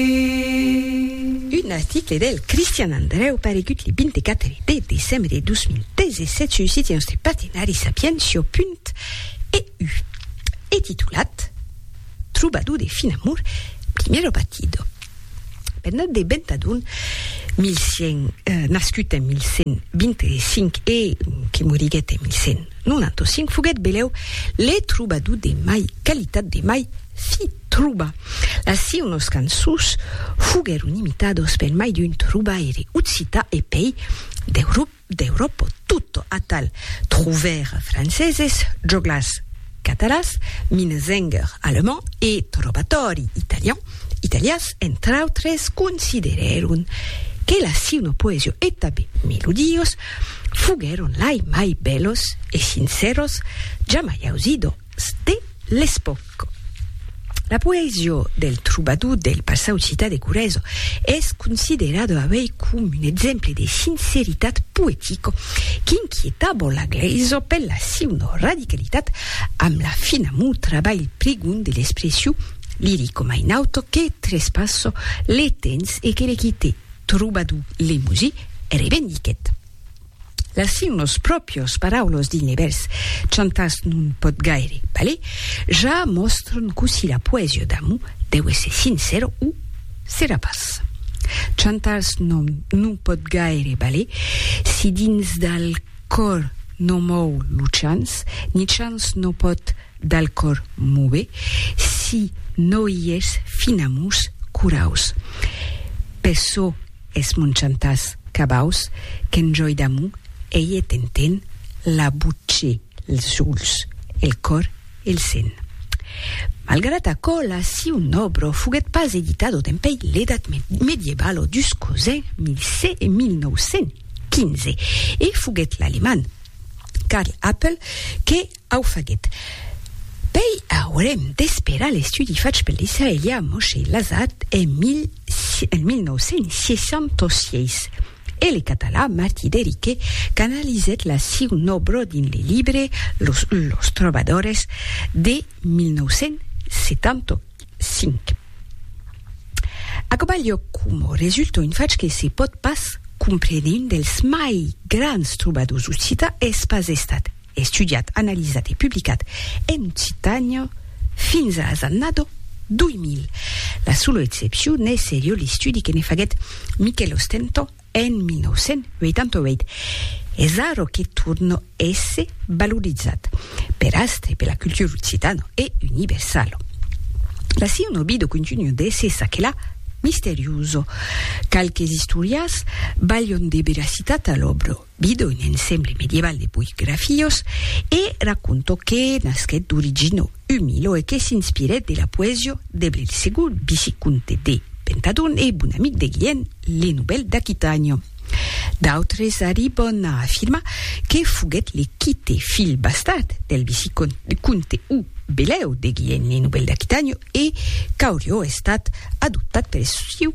Un article del Cristian Andrèu paregut le 24 de decembre de 2017 sul site nòstre partenari sapientia.eu e titulat Trobador de fin amor, primero batido. Bernat de Bentadon, 1100, eh, nascut en 1125 e que moriguèt en 1195, foguèt belèu le trobador de mai qualitat de mai fi, Truba. Las siunos cançons foguèron imitados per mai d'un trubaire occità e pei d'Euròpa tota atal truvèr franceses, joglars catalans, minnesänger alemand e trovatòri italian, italians entre autres, considerèron que las siuno poesia e tanben melodios foguèron lai mai bèlos e sincèros jamai ausido de l'espòc. La poesia del trobador del passau citat de Corèzo es considerada avei com un exemple de sinceritat poetica qu'inquietava la glèisa per la siuna radicalitat amb la fin amor trabalh prigon de l'expression lirica mai nauta que trespassa le temps e que le quite trobador Limousin revendiquèt Las signos pròpios, paraulos dins le vèrs chantàs non pòt gaire balhar, ja mòstran cossí la poesia d'amor deu èsser sincèra o serà pas. Chantàs non non pòt gaire balhar si dins dal còr non mòu lo chants, ni chants non pòt dal còr mover si no i es finamors coraus. Per çò Es mon chantàs cabaus qu'en jòi d'amor ei e t'enten la botge, els ulhs, el còr e el sen. Malgrat aquò, la siu nòbro foguèt pas editado dempèi l'edat medievalo dus cosins 1915 e foguèt l'alemand Karl Appel que Au faguet. Pei aurem d'esperar l'estudi fach pel israelià Moshe Lazat en 1966 e le catalan Martí Derique qu'analizèt la siu nòbro dins le libre Los Los Trobadores de 1975. Aquò balhò coma resulta un fach que se pòt pas comprene, un dels mai grands trobadors occitans es pas estat, estudiat, analizat e publicat en occitan fins a las annada 2000. La sola excepcion es serieu l'estudi que ne faguèt Miquèl Ostentó en 1988. Es ara que torna èsser valorizat per Astre e per la cultura occitana e universala. La siuna vida continua d'èsser çaquelà misteriosa. Qualques istorias balhan de veracitat a l'òbra. Bido un ensemble medieval de puig grafiós e raconto que nasquèt d'origina umila e que s'inspirèt de la poesia de Blelsegur, vicicomte de Pentadon e bon amic de Guilhèm le Novèl d'Aquitània. D'autres arriban a afirmar que foguèt le quite filh bastard del vicicomte o belèu de Guilhèm le Novèl d'Aquitània e qu'aurió estat adoptat per sieu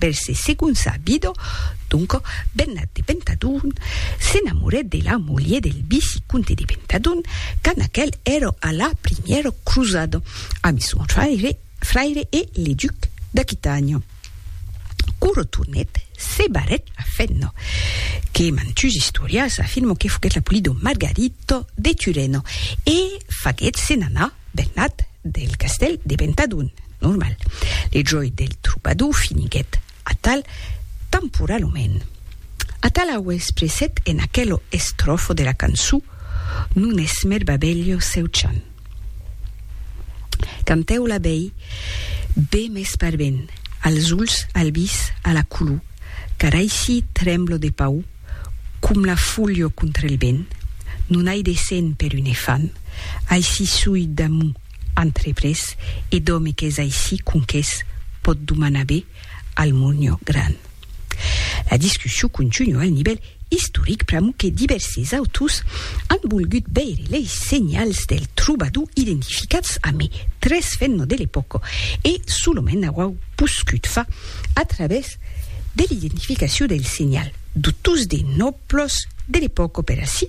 Vel se segonça a Bido, donco, bennat de Pentadon, s'enamorèt de la mulher del vicicomte de Pentadon, quand aquel èra a la primièra crosada, ami son fraire, fraire e le duc d'Aquitània. Quand retornèt, se barrèt la fenna, que mantuns istorians afirman que foguèt la polida Margarita de Turena, e faguèt se'n anar bennat del castèl de Pentadon. normal. Le jòi del trobador finiguèt atal temporalament. Atal au expressèt en aquelo estròfo de la cançon Non es mèr babelho seu chant. Cantèu la bèi be mès par ben, als ulhs, al vis, a la color, car aicí tremblo de paur com la folho contra el vent, non ai de sent per un efant, aicí sui damont Entreprés e d'òme qu'es aicí conques pòt domanar be al Murnhó Gran. La discussion contunua al nivèl istoric pr'amor que divèrses autors an volgut veire lei senhals del trobador identificats amé tres fenno de l'epòca e solament auau poscut far a travèrs de l'identificacion del senhal d'autors de nòblos de l'epòca per ací